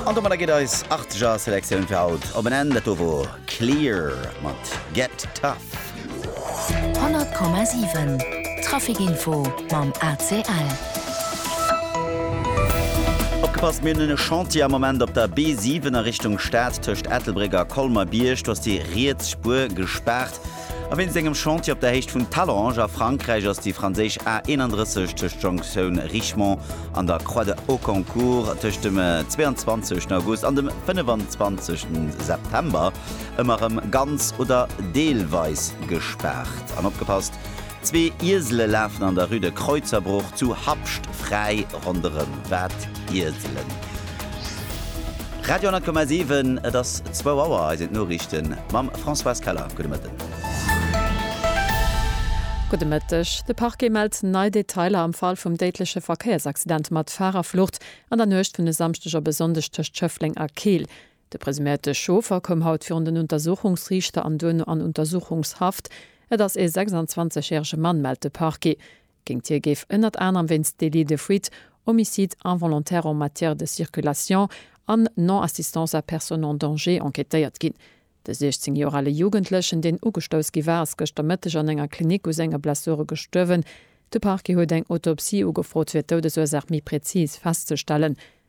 An domadder geet eis arteger Selektioun fir haut op en Enn. Dat do wor Clear mat Get Tough. 100,7 Traficinfo mam ACL. Opgepasst, mir hunn e Chantier am Moment op der B7 a Richtung Stad tëscht Ettelbréck a Colmer-Bierg. Do ass déi riets Spuer gespaart. A wéinst engem Chantier op der Héicht vun Talange a Frankräich ass déi franséisch A 31 tëscht Jonktioun Richemont an der Croix de Hauconcourt tëscht dem 22 August an dem 25 September ëmmer erëm ganz oder deelweis gespaart. An opgepasst, Zwee Iesele lafen an der Rue de Kreuzerbruch zu Habscht fräi ronderëm. Wat Ieselen? Radio 10,7, et ass zwou Auer. Eis sinn d'Noriichte mam Françoise Keller. Gudde Mëtten. Gudde Mëtteg. De Parquet mellt nei Detailer am Fall vum déidleche Verkéiersaccident mat Fahrerflucht an der Nuecht vun e Samschdeg op e Sonndeg tëscht Schëffleng a Keel. De presuméierte Chauffer koum haut virun den Untersuchungsriichter an duerno an Untersuchungshaft. Et ass ee 26 järege Mann, mellt de Parquet. Géingt hie géif ënnert anerem wéinst Délit de fuite, Homicide involontaire en matière de circulation an Non-assistance à personne en danger enquêtéiert ginn. De 16 Joer ale Jugendlechen, deen ugestouss gi war, ass gëschter Mëtteg an enger Klinik u senge Blessure gestuerwen. De Parquet huet eng Autopsie ugefrot, fir d'Doudesursaach méi präzis festzestellen.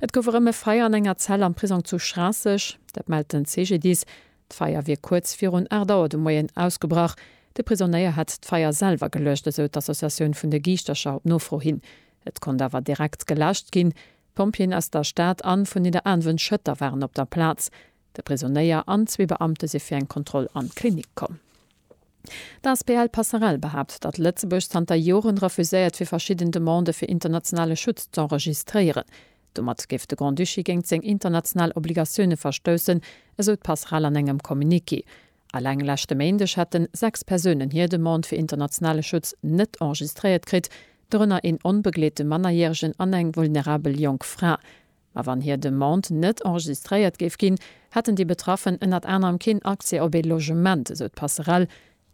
Et gouf erëm e Feier an enger Zell am Prisong zu Schraasseg, dat mellt den CGDIS. D'Feier wier kuerz virun 8 Auer de Moien ausgebrach. De Prisonéier hätt d'Feier selwer geluecht, esou d'Associatioun vun de Giischtercher op Nofro hin. Et konnt awer direkt geläscht ginn. D'Pompjeeën aus der Stad an vun Nidderaanwen-Schëtter waren op der Plaz. De Prisonnéier an zwee Beamte si fir eng Kontroll an d'Klinik komm. D'Asbl Passerell behaapt, datt Lëtzebuerg zanter Joren refuséiert fir verschidden Demandë fir internationale Schutz z'enregistréieren. Domat géif de Grand-Duché géint seng international Obligatioune verstoussen, esou d'Passerell an engem Communiqué. Alleng leschte Méindeg hätte sechs Persounen hir Demande fir internationale Schutz net enregistréiert kritt, dorënner een onbegleete Mannerjäregen an eng vulnerabel jonk Fra. Ma wann hir Demande net enregistréiert géif ginn, hätten déi Betraffen ënnert anerem keen Accès op ee Logement, esou d'Passerell.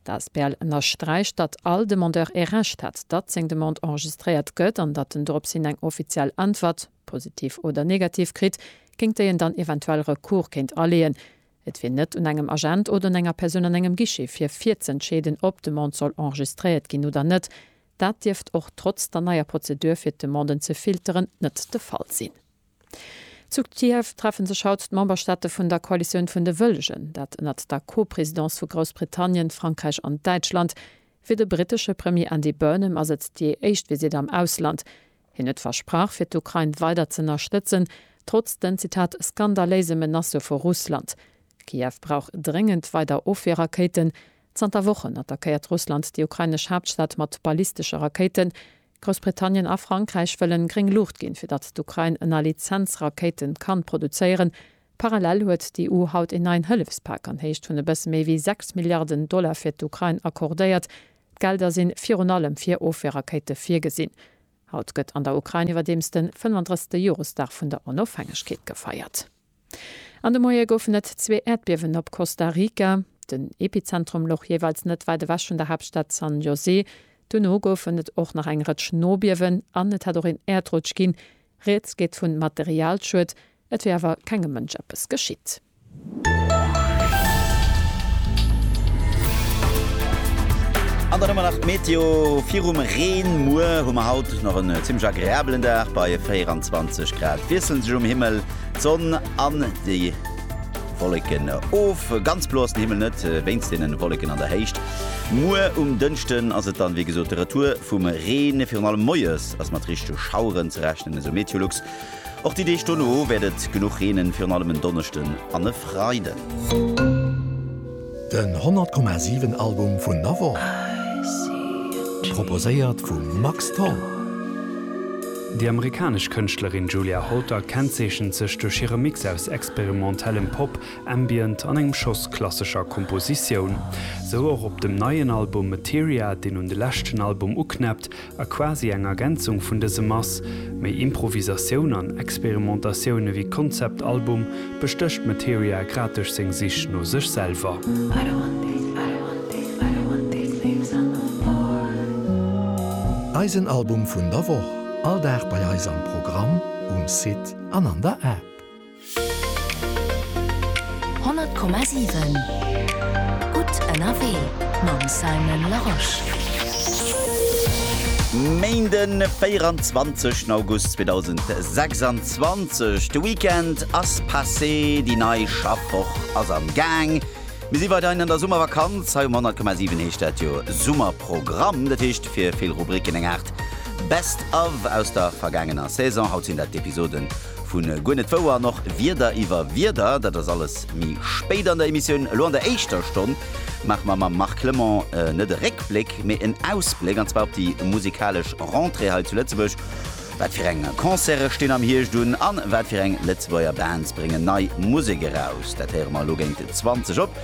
D'asbl ënnersträicht, datt all Demandeur ee Recht hätt, datt seng Demande enregistréiert gëtt an datt en dorops hin eng offiziell Äntwert, positiv oder negativ, kritt, géint déi en dann eventuell Recours kéint aleeën. Et wier net un engem Agent oder un enger Persoun an engem Guichet fir virzëentscheeden, ob d'Demande soll enregistréiert ginn oder net. Dat dierft och trotz der neier Prozedur fir d'Demanden ze filteren net de Fall sinn. Zu Kiew treffe sech haut d'Memberstaate vun der Koalitioun vun de Wëllegen, dat ënnert der Co-Presidence vu Groussbritannien, Frankräich an Däitschland. Fir de brittesche Premier Andy Burnham ass et déi éischt Visitt am Ausland. Hien huet versprach fir d'Ukrain weider z'ënnerstëtzen, trotz den, Zitat, skandaléise Menacë vu Russland. Kiew brauch dréngend weider Ofwierrakéiten, Zanter Wochen attackéiert Russland déi ukrainesch Haaptstad mat ballistesche Rakéiten. Groussbritannien a Frankräich wëllen gréng Luucht ginn, fir datt d'Ukrain ënner Lizenz Rakéiten kann produzéieren. Parallel huet d'EU haut een neien Hëllefspak an Héicht vun e bësse méi wéi 6 Milliarden Dollar fir d'Ukrain accordéiert. D'Gelder sinn virun allem fir Ofweerrakéite virgesinn. Haut gëtt an der Ukrain iwwerdeems den 35. Joresdag vun der Onofhängegkeet gefeiert. An de Moie goufen et zwee Äerdbiewen op Costa Rica, den Epizentrum louch jeeweils net wäit ewech vun der Haaptstad San José. Duerno goufen et och nach eng Rëtsch Nobiewen an et hätt och een Äerdrutsch ginn. Rieds geet vu Materialschued, et wier awer kengem Mënsch eppes geschitt. An dann hu mer nach d'Meteo virum Reen. Muer hu mer haut nach en zimmlech agreabelen Dag bei 24 Grad. Wiesselen sech um Himmel. D'Sonn an déi Wolleken of. Ganz blo ass den Himmel net, wéinst deenen Wolleken an der Héicht. Muer um Dënschden ass et dann wéi gesot de Retour vum Reen. Virun allem moies ass mat richtege Schaueren ze rechnen, esou Meteolux. Och déi Deeg dono wäert et genuch reenen, virun allem en Donneschden an e Freiden. Den 100 Komma 7 Album vun Navor, proposéiert vum Max Tholl. Déi amerikanesch Kënschtlerin Julia Holter kennzeechent sech duerch hire Mix aus experimentellem Pop, Ambient an engem Schoss klassescher Kompositioun. Sou och op dem neien Album Materia, deen un de leschten Album uknäppt, A quasi eng Ergänzung vun dësem ass méi Improvisatioun an Experimentatioun ewéi Konzeptalbum, bestécht Materia grad duerch seng Sich no sech selwer. Eisen Album vun der Woch, all Dag bei eis am Programm, um Site an an der App. 100,7 Gutt ënnerwee mam Simon Larosche. Méinde 24 August 2026, de Weekend ass passé, déi nei Schaffwoch ass am Gaang. Mir si weiderhin an der Summervakanz. Hei um 100,7 heescht dat jo Summerprogramm. Dat heescht fir vill Rubricken eng Aart Best of aus der vergaangener Saison. Haut sinn dat d'Episoden Vu Guer net wouer an och Wierder iwwer Wierder, dat ass alles méi spéit an der Emissioun. Elo an der éischter Stonn maache mer mam Marc Clement net e Réckbléck, mee en Ausbléck, an zwar op déi musikalesch Rentrée hei zu Lëtzebuerg. Wat fir eng Concerte stinn am Hierscht un a wat fir eng Lëtzebuerger Bands bréngen nei Musek eraus? Dat héiere mer elo géint 20 op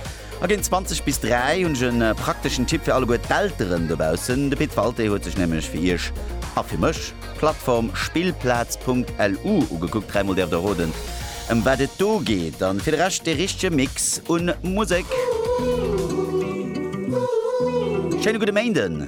A géint 20 bis 3 hunn ech e prakteschen Tipp fir alleguer d'Elteren dobaussen. De Pit Walté huet sech nämlech fir Iech a fir mech d'Plattform Spillplaz.lu ugekuckt. Dräimol däerft der roden, ëm wat et do geet. A fir de Rescht de richtege Mix un Musek. Schéine gudde Méinden!